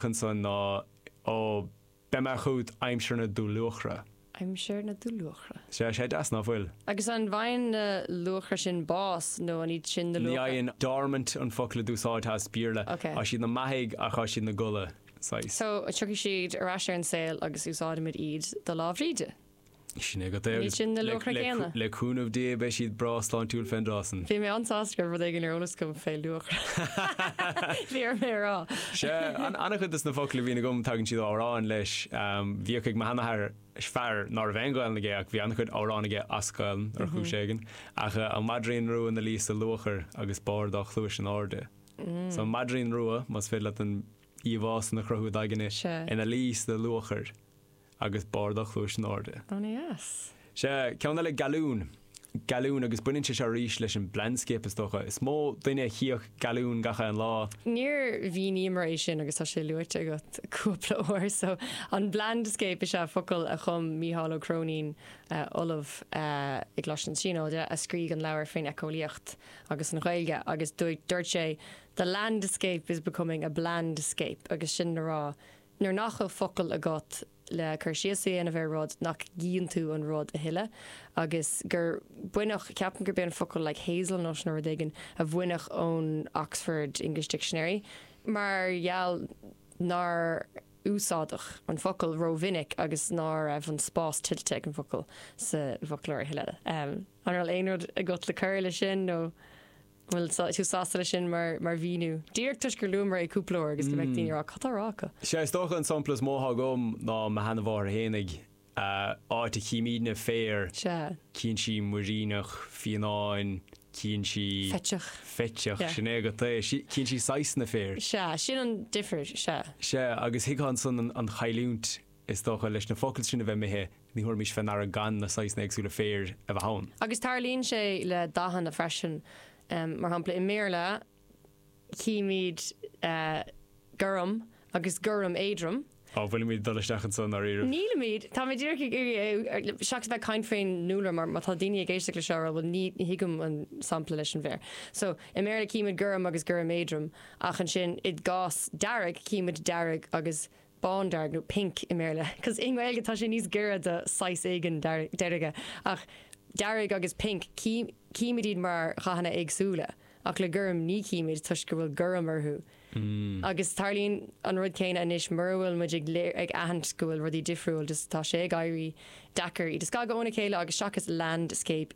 ansan ná Ó, beidh mé chúghat aimsir na dúluachra. aimsir na dúluachra. Sea, tá sé deas ná fuil? Agus an bhfaigheann na luachra sin bás nó an iad sin na Ní luachra? fhaigheann. Dormant an focal a d'úsáidtheá as Béarla. Ok. Thá siad 'na mbeathaidh ach thá siad 'na gcodladh, saghas. So, tiocfaidh siad ar ais ar an saol agus úsáidfimid iad do Lá Bhríde? Sin é agat é agus le cúnamh Dé beidh siad breá sláintiúil fén dtráth san. Bhí mé an-sásta go raibh rud éigin ar eolas agam fé luachair féadfaidh mé a rá. Sea, an-chuid de sna focail a bhíonn agam tagann siad ó amhráin leis. Bhíodh ag mo sheanathair, fear ná raibh aon Ghaelainn aige ach bhí an-chuid amhrán aige as Gaelainn ar chúis éigin. Ach an Maidrín Rua, ina luí sa luachair agus barr a dhá chluais in Airde. So an Maidrín Rua, más féidir leat an íomhá san a chruthú id aigne, ina luí sa luachair. Agus barr a dhá chluais in airde. An-dheas. Sea, ceann eile gealbhan. Gealbhan, agus baineann sé seo arís leis an blandscape is dócha. Is mó duine a chífeadh gealbhan gach aon lá. Níor mhíníomar é sin agus tá sé luaite agat cúpla uair so. An Blandscape is ea focal a chum Mícheál Ó Cróinín, ollamh i gColáiste na Tríonóide, a scrígh an leabhar fén eiceolaíocht agus an Ghaeilge agus dúirt sé The landscape is becoming a blandscape agus sin le rá Nuair nach bhfuil focal agat le cur síos a dhéanamh ar rud nach gcíonn tú an rud a thuilleadh agus gur baineadh, ceapaim gurb é an focal like hazel nut nó rud éigin a baineadh ón Oxford English Dictionary mar gheall nár úsáideadh an focal rómhinic agus ná raibh an spás tuillte ag an bhfocal sa bhfoclóir a thuilleadh. An raibh aon rud agat le cur leis sin nó? An bhfuil tú sásta leis sin mar mhíniú? Díreach toisc gur luamar é cúpla uair agus go mbeadh daoine ag rá, cad tá á rá acu? Sea, is dócha an sampla is mó atá agam ná mo sheanamháthair, aon áit a chímídne féar, Sea. cíonn sí muiríneach, fionnán, cíonn sí. Feiteach. feiteach, Sea. sin é agat é, sí, cíonn sí saghsanna féir. Sea, sin an difir, sea. Sea, agus thuigfeá ansan an chailliúint Is dócha, leis na focail sin a bheith imithe, ní thabharfaimis fé ndeara gan na saghsanna éagsúla féir a bheith ann. Agus tarlaíonn sé le dathanna freisin. Mar shampla, i mBéarla, chímíd gorm agus gorm éadrom. Á, an bhfuilimíd ag dul isteach anso i ndáiríribh? Nílimíd. Táimíd díreach ag iarraidh, seachas a bheith ag caint fén dúlra, mar má tá daoine ag éisteacht leis seo a rá, bhuel, ní thuigim an sampla leis an bhféar. So, i mBéarla, címid gorm agus gorm éadrom, ach ansin, i gcás dearg, címid dearg agus bándearg nó pink i mBéarla cos i nGaeilge tá sé níos giorra do saghas éigin deirge ach dearg agus pink címid iad mar dhathanna éagsúla ach le gorm ní chímid toisc go bhfuil gorm orthu agus tarlaíonn an rud céanna anois mura bhfuil muid ag aithint go bhfuil rudaí difriúil just tá sé ag éirí deacair iad a scagadh óna chéile agus seachas landscape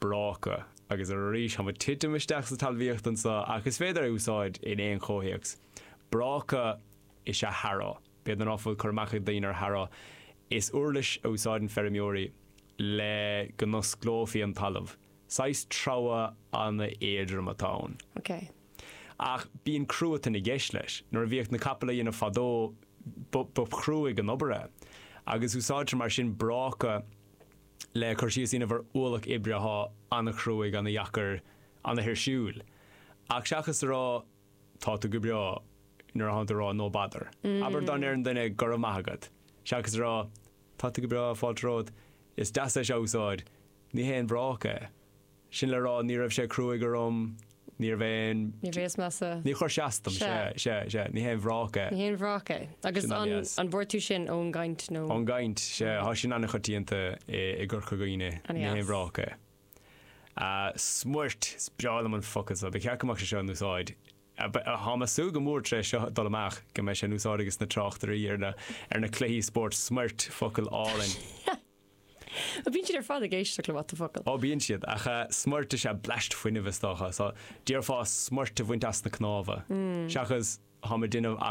bráca. Agus arís, táimid titim isteach sa talmhaíocht anso, ach is féidir é a úsáid in aon chomhthéacs. Bráca is ea harrow. B'fhéidir ná fuil cur amach ag daoine ar harrow. Is uirlis a úsáideann feirmeoirí le go n-osclófaí an talamh. Saghas treabhadh ana-éadrom atá ann. OK. Ach bíonn cruatan i gceist leis. Nuair a bhíodh na capaill á dhéanamh fadó, ba chruaidh an obair é. Agus úsáidtear mar sin bráca. le cur síos a dhéanamh ar ualach oibre athá ana chruaidh, ana dheacair, ana thuirsiúil. Ach seachas a rá tá tú go breá nuair athánn tú a rá no bother. Abair go ndeireann duine go raibh maith agat, seachas a rá tá tú go breá fáilte romhat, is deas é seo a úsáid, ní haon bhráca é. Sin le rá, ní raibh sé cruaidh orm, ní raibh aon. Ní bhíos mé sa. Ní chuir sé as dom, sea, sea, sea, ní haon bhráca é. Ní haon bhráca é. Agus Sin an, an, dheas. an bhfuair tú sin ón gcaint nó? Ón gcaint, sea, thá sin an-choitianta i, i gCorca Dhuibhne, An ní haon dheas. bhráca é. Ah, smuirt, is breá liom an focal so, ba cheart go mbeadh sé seo in úsáid, ah, ba, thá mé súil go mór tar éis seo dul amach go mbeidh sé in úsáid ages na tráchtairí ar na, ar na cluichí spóirt, smuirt, focal álainn. Bíonn siad ar fad ag éisteacht le what the focal. Ó bíonn siad, ach smuirt is ea bleaist fuinnimh is dócha, so, déarfá smuirt a bhaint as na cnámha, seachas, tá mé déanamh, ach.